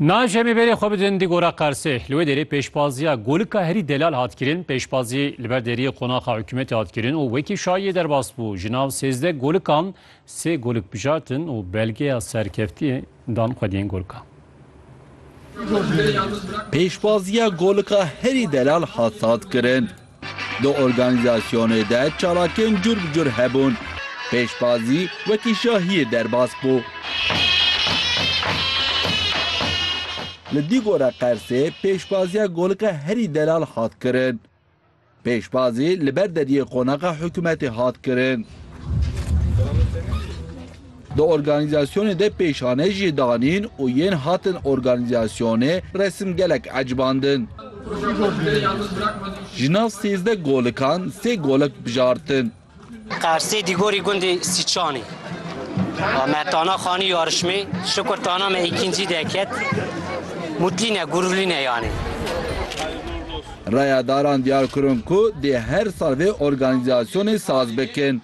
Naj em ê berê xwe bidin di gora Qersê. Li wê derê pêşbaziya golika herî delal hat kirin, pêşbazî li ber deriyê qonaxa hikûmetê hat kirin û wekî şayiyê derbas bû. Ji nav sêzdeh golikan sê golik bijartin û belgeya serkeftî dan xwediyên golikan. Pêşbaziya golika herî delal hat hat kirin. Di organîzasyonê de çalakiyên cur bi cur hebûn. Pêşbazî wekî şahiyê derbas bû. Li Dîgora Qersê pêşbaziya Golika Herî Delal hat kirin. Pêşbazî li ber deriyê qonaxa hikûmetê hat kirin. Di organîzasyonê de pêşanê jî danîn û yên hatin organîzasyonê resim gelek ecbandin. Ji nav sêzdeh golikan sê golek bijartin. Qersê Dîgorî gundê Sîçanê me tana xanî yarişmê Şukur tana me îkincî de ket, mûtlîne gurulîne yanê. Raya daran diyar kirin ku dê her sal vê organîzasyonê saz bikin.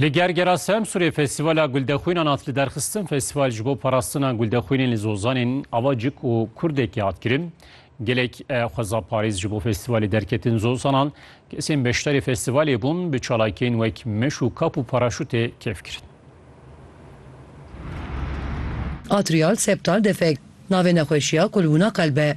Li Gergera Semsûrê Festîvala Guldexwînan hat liderxistin. Festîval ji bo parastina guldexwînên li Zozanên ava cik û kurdekî hat kirin. Gelek xwezaparêz ji bo festîvalê derketin Zozanan. Kesên beşdarê festîvalê bûn bi çalakiyên wek meş û kap û paraşûtê kêf kirin. Atrial septal defek. Navê nexweşiya kulbûna qelb e.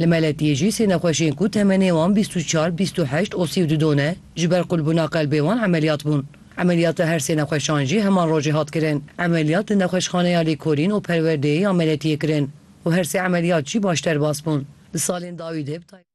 Li Meletiyê jî sê nexweşên ku temenê wan bîst û çar, bîst û heşt û sî û du don e, ji ber qulbûna qelbê wan emeliyat bûn. Emeliyata her sê nexweşan jî heman rojê hat kirin. Emeliyat li Nexweşxaneya Lêkolîn û Perwerdeyê ya Meletiyê kirin û her sê emeliyat jî baş derbas bûn. Di salên dawî de bi taybetî.